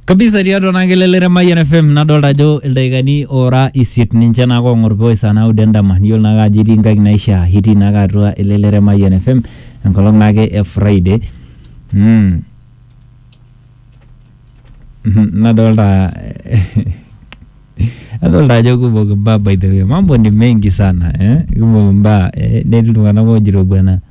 kabisa tiatua naa kelelere Mayian FM nadolta ajo ildaikani oora isiet ninche naa kong'or pooki saa naudo endama niyiolo naake ajo itii nkaik naishaa itii naake atua elelere Mayian FM enkolong naake e Friday mm. Mhm, nadolta adolta ajo kumok imbaa by the way mambo ni mengi sana eh? kumok imbaa eh? netii iltung'anak ojito bwana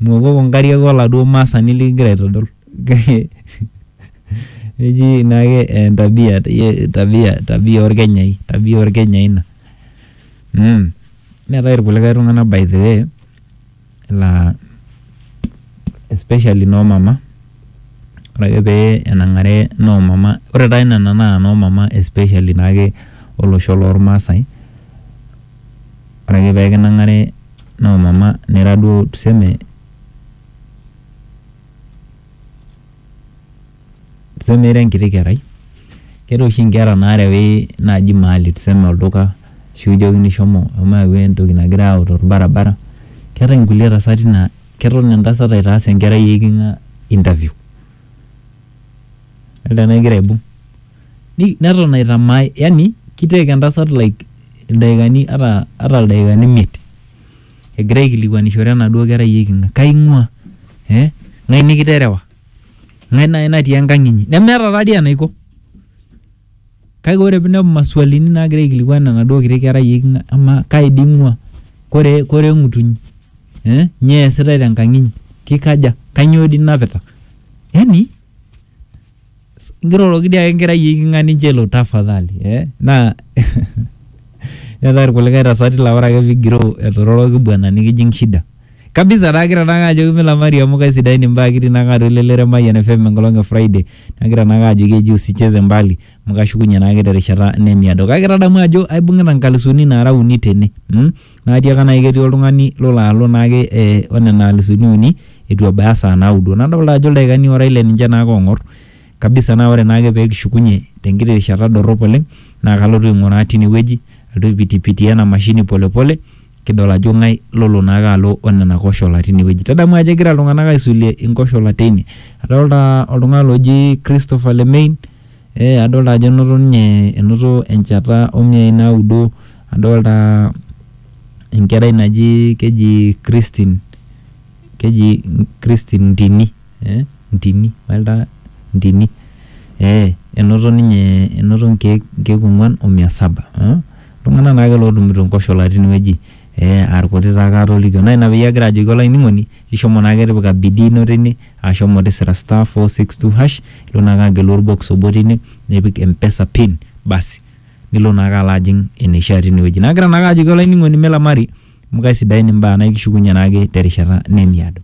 Miwokoko nkariak oladuo maasani likigira aitodol. Eji naake entabia tabia tabia olkenyai tabia olkenyai ina. Neetai ilkulikae tung'anak by the way laa especially noo mama, ore ake pee enang'are noo mama, ore taa nena naa noo mama especially naake olosho lolmaasai Ore ake pee kinang'are noo mama nira duo tuseme tuseme ira enkiti kerai, keetai oshi nkera naarewi naaji mahali tuseme olduka ashu kijokini shomo shomo yau entoki nagirai aayau torbaribara. Keetai nkulie tasati naa keton entasat aitaas enkerai e iking'a interview. Elde naa egira aibung Ni- neton aitamae yani ki take entasat like ildaikani ata ata ildaikani imiet egira aikilikwanishore enaduo kerai eiking'a kaing'ua eh ng'ae nikiterewa ng'ae naai natii enkang inyi nemeeta taadii enaiko kake ore pinepu masualini nagira aikilikuan enaduo kiti kerai eiking'a amaa kai dii ing'ua kore kore eng'utunyi eh nyoo eesitae tenkang inyi kikaja kanyio dii inapita yani. Nkiroroki dii ake nkerai e king'ani nchelo tafadhali eh naa neetae irkulikae tasati laa ore ake pigiroo etororoki bwana nikijing shida kabisa naa kira naake ajoki milamari amu kaisidain imbaa kitii naake atua elelero e Mayian FM enkolong e Friday nagira naake ajoki eji usicheze mbali amu kashukunye naake terishata nemiado kake tadamu ajo aibung'ita nkalisuni naara uni tene mm Naa atiaka naai ketii oltung'ani lolo alo naake o nena alisuni uni eitu ebaya saa naudo. Nadolita ajo ildaikani ora ile ninche naake oong'or kabisa naa ore naake peekishukunye tenkiti rishata dorrop oleng naa kalotu aing'uraa tine wueji alotu aipitipitie ena mashini pole pole kidol ajo ng'ae lolo naake alo o nena koshola tine wueji. Tadamu ajo egira iltung'anak aisulie nkoshola teine. Adolita oltung'ani loji Christopher Lemein. Adolita ajo enoto ninye enoto enchata o miai naudo, adolita enkerai naji keji Christine, keji Christine Ntini, Ntini, adolita Ntini, ee enoto ninye enoto nkeek ong'wan o mia saba. Iltung'ana naake lootumito nkoshola tinewueji aa ilkuti taake aatolikio naa ina peyie agira ajoki olainining'oni shomo naake tipika bidii ino tine. ashomo tisira star 462 hash ilo naake agelu orbox obo tine nipik mpesa pin basi nilo naake alo ajing eneishaa tinewueji nagira naake ajoki olainining'oni melamari amu kaisidain imbaa naa ikishukunye naake terishata nemiado